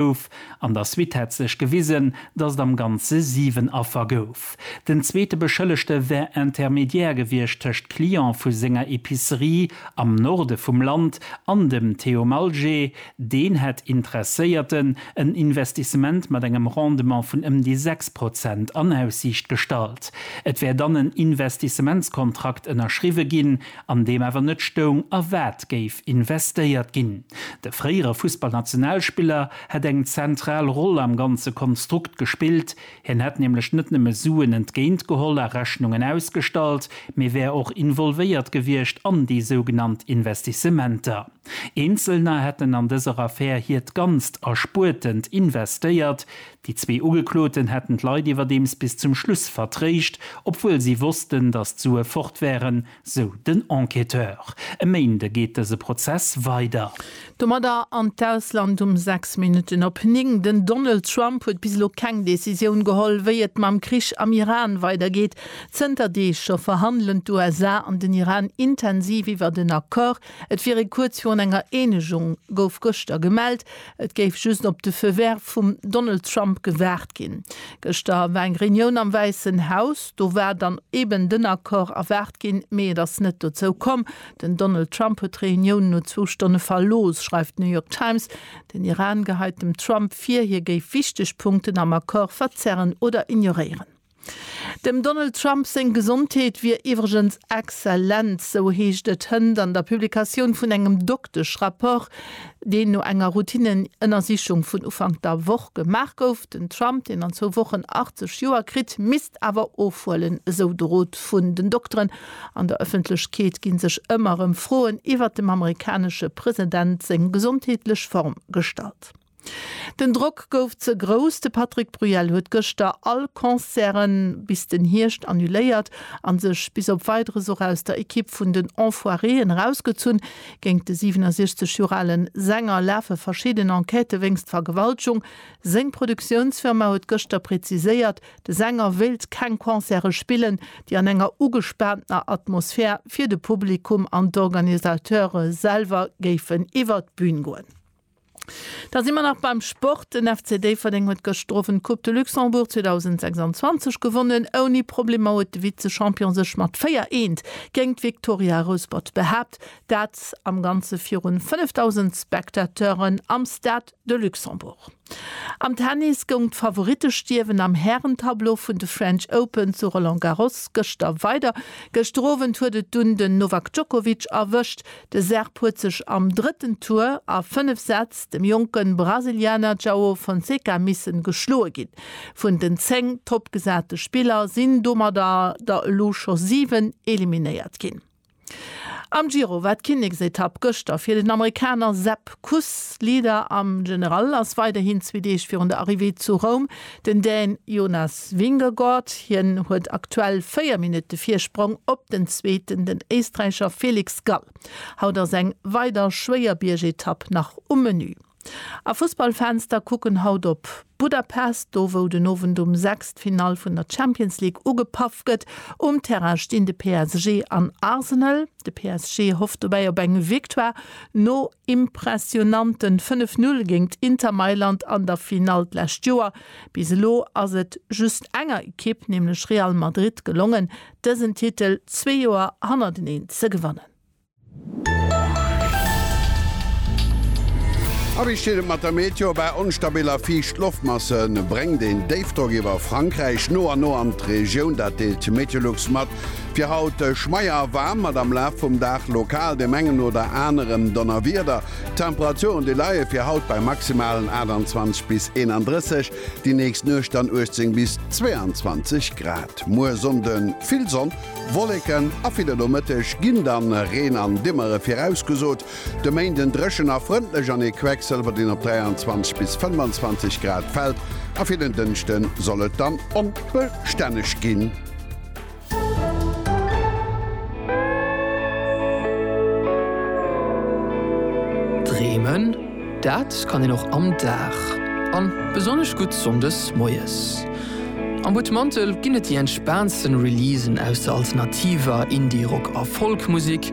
Gouf. An der Suite hätt sech gewisen, datt et am Ganze 7 Affer gouf. Den zweete Beschëllegte wär Intermédiaire gewiescht tëscht Client vu senger Epicerie am Norde vum Land an dem Theo Malgé. Deen hätt Interesséierten en Investissement mat engem Rendement vun ëm déi 6 Prozent an Aussiicht gestallt. Et wär dann en Investissementskontrakt ënnerschriwwe ginn, an deem awer net stoung a wat géif investéiert ginn. De fréiere Fussballnationalspiller hätt eng zentral Roll am ganze Konstrukt gespillt. Hien hätt nämlech net nëmme Suen entgéint geholl a Rechnungen ausgestallt, mee wär och involvéiert gewiescht an déi sougenannt Investissementer. Eenzelner hätten an dëser Affär hiert ganzt Erspuertent investéiert, Déi zwee Ugekloten hätten d'Leit iwwerdeems bis zum Schluss vertréischt, obwuel si wossten, datt d'Sue fort wären, sou den Enquêteur. E Méinde geet dëse Prozess weider. Domadder an d'Ausland um 6 Minutten op 9. Den Donald Trump huet bis elo keng Decisioun geholl, wéi et mam Krich am Iran weidergeet. Zënter Deeg scho verhandelen d'USA an den Iran intensiv iwwert en Accord. Et wier ee kuerz virun enger Eenegung, gouf gëschter gemellt. Et géif just op de Feu vert vum Donald Trump gewaart ginn. Gëschter war eng Reunioun am Wäissen Haus. Do war dann eben den Accord erwaart ginn, mee et ass net dozou komm. Den Donald Trump huet d'Reunioun no zwou Stonne verlooss, schreift d'New York Times. Den Iran geheit dem Trump vir, hie géif wichteg Punkten am Accord verzerren oder ignoréieren. Dem Donald Trump seng Gesondheet wier iwwregens exzellent, esou heescht et hënt an der Publikatioun vun engem Dokteschrapport, deen no enger Routineënnersichung vun Ufank der Woch gemaach gouf. Den Trump, deen an zwou Wochen 80 Joer kritt, misst awer ofhuelen, esou de Rot vun den Dokteren. An der Ëffentlechkeet gi sech ëmmer erëm Froen iwwert dem amerikanesche President seng gesondheetlech Form gestallt. Den Drock gouf ze grouss, de Patrick Bruel huet gëschter all Concerte bis den Hierscht annuléiert a sech bis op Weideres och aus der Ekipp vun den Enfoiréen erausgezunn. Géint de 67 Joer ale Sänger lafe verschidden Enquêtë wéinst Vergewaltgung. Seng Produktiounsfirma huet gëschter preziséiert, de Sänger wéilt keng Concerte spillen, déi an enger ugespaantener Atmosphär fir de Publikum an d'Organisateure selwer géifen iwwer d'Bün goen. Da si mer nach beim Sport. Den FC Déifferdeng huet gëschteren d'Coupe de Luxembourg 2026 gewonnen. Ouni Problemer huet de Vize-Champion sech mat 4 Eent géint d'Viktoria Rouspert behaapt, dat am Ganze virun 5.000 Spectateuren am Stade de Luxembourg. Am Tennis goung d'Favorittestierwen am Hären-Tableau vun de French Open zu Roland Garros gëschter weider. Gëschter Owend huet et dunn den Novak Djokovic erwëscht. De Serb huet sech am drëtten Tour a fënnef Sätz dem jonke Brasilianer Joao Fonseca missen geschloe ginn. Vun den zéng toppgesate Spiller sinn domadder der elo scho siwen eliminéiert ginn. Am Giro war d'Kinneksetapp gëschter fir den Amerikaner Sepp Kuss. Leader am General ass weiderhin zwee Deeg virun der Arrivée zu Roum Den Dän Jonas Vingegaard, hien huet aktuell 4 Minutte Virsprong op den Zweeten, den Éisträicher Felix Gall. Haut ass eng weider schwéier Biergetapp nach um Menü. A Fussballfans, da kucken haut op Budapest, do wou den Owend um 6 d'Finall vun der Champions League ugepaff gëtt. Um Terrain stinn de PSG an Arsenal. De PSG hofft dobäi op eng Victoire no impressionanten 5 Null géingt Inter Mailand an der Finall d'lescht Joer. Bis elo ass et just enger Ekipp, nämlech Real Madrid gelongen, dësen Titel zwee Joer hannerteneen ze gewannen. A wéi steet et mat der Meteo? Bei onstabil a fiicht Loftmasse bréngt een Déifdrock iwwer Frankräich no an no an d'Regioun. Dat deelt Meteolux mat. Fir haut schmeier a waarm, mat am Laf vum Dag lokal dem engen oder anerem Donnerwieder. D'Temperaturen déi leie fir haut bei maximalen 28 bis 31, déi nächst Nuecht dann 18 bis 22 Grad. Muer Sonnde vill Sonn, Wolleken a vill. Am Nomëtteg ginn dann Reen an Dimmere virausgesot, De Méinden dréchen a frëndlech an ee Quecksëlwer deen op 23 bis 25 Grad fält a fir den Dënschde soll et dann onbestänneg ginn. Dreemen, dat kann een och am Dag an besonnesch gutt Sonndes moies. Am Butmantel ginn et déi entspaantsten Releasen aus der alternativer, Indie-, Rock a Folk-Musek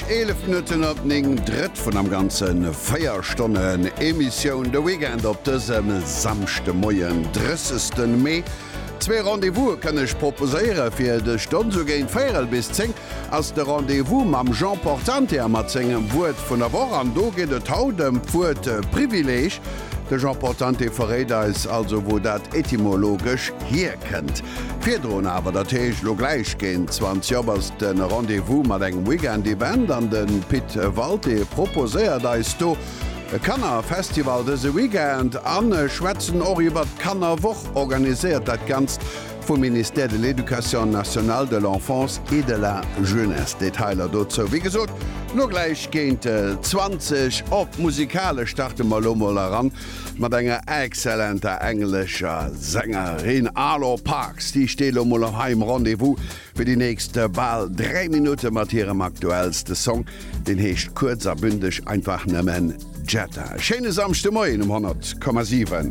11 Minutten op 9, drëtt vun am ganzen 4 Stonnen Emissioun de Weekend op dësem Samschdemoien, 30 Mee. Zwee Rendez-Vouse kënn ech proposéiere fir dës Stonn. Sou géint véierel bis 10 ass de Rendez-Vous mam Jean Portante a mat sengem Wuert vun der Woch. An do geet et haut ëm d'Wuert Privileeg. De Jean Portante verréit eis also, wou dat etymologesch hierkënnt. kennt. Virdrun awer, dat heescht lo gläich géint 20 op, ass de Rendez-vous mat engem Weekend-Event an de Pit Walté proposéiert eis do e Kanner-Festival dëse Weekend an schwätzen och iwwert d'Kannerwoch. Organiséiert dat Ganzt vum Ministère de l'Éducation nationale, de l'Enfance et de la Jeunesse. Detailer dozou, wéi gesot, lo gläich géint 20 op. Musikalesch starte mer lo mol eran. Mat enger excellenter englescher Sängerin, Arlo Parks, déi steet elo mol am heim Rendez-vous fir déi nächst bal 3 Minutte mat hirem aktuellste Song. Deen heescht kuerz a bündeg einfach nëmmen Jetta. Schéine Samschdemoien um 100,7.